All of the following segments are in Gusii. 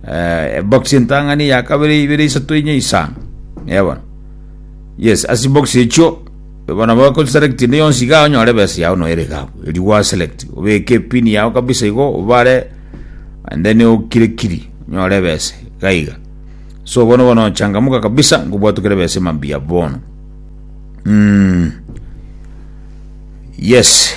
Eh, box entang'ani ya kabere ibere isato inye isa yabona yes asi box echo bona ba ko select inde yonsi ga onyore besa yao no ere ga eri wa select obeke pin yao kabisa igo obare and then okire kiri nyore besa gaiga so bono bono changamuka kabisa ngobwatukire besa mambia bono mm. yes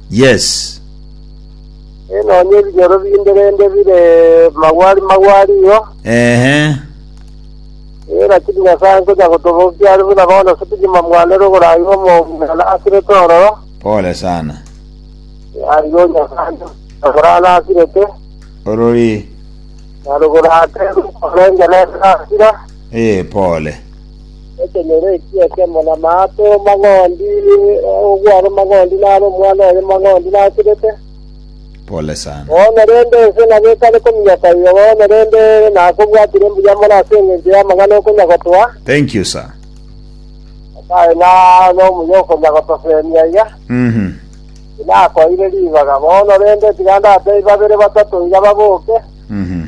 Yes. Ee, nonya ebinyoro binde rende bire magwari magwari igo. Ehe. Ee, lakini Nyasae nkonya gotobokia are buna bono ase kegima mwane ore ogoraigwa omong'ina na asirete ororo. Pole sana. Arigo Nyasae agora na asirete, Orori. na rogora ate rukorenge nere nasira. Ee, pole. Ekenyoro ekio ekemo namaato mang'ondi, ogware mang'ondi naro omwana oye mang'ondi naturete. Pole sana. Bono rende ense nabo ekare kominyoka igo, bono rende nakobwatire mbuya mono ase engencho y'amang'ana okonya gotoa, Thank you sir. Nyasae na nomuya okonya gotoseemia iga. Mhm. Tinakoire ribaga, bono rende tiga ndatebie babere batato iga baboke, Mhm.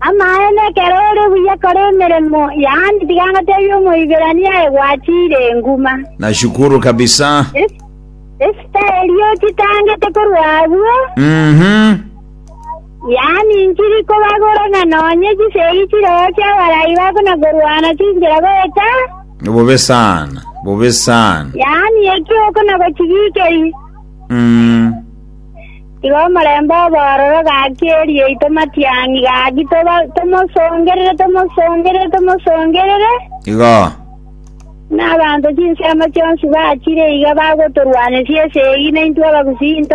Amaene, ekero ore buya kora emeremo yaani, tiga ngotebie Omoiberania aye gwachire enguma. Nashukuru kabisa. Es- Esita eria ochitangete korwa agwo, Mhm. yaani nchiri kobagora ng'a nonye chisegi chireo chi'abarai bako na korwana chinchera goeta, Bobe sana. Bobe sana. yaani ekio oko na gochibikeri. Mm. Igo omorembe obe ororo gaki e riaito matiang'i gaki, tomosongerere, tomosongerere, tomosongerere. Igo. Buna abanto chinsemo chionsi bachire iga bagotorwanesia esegi, naintwe abagusinto.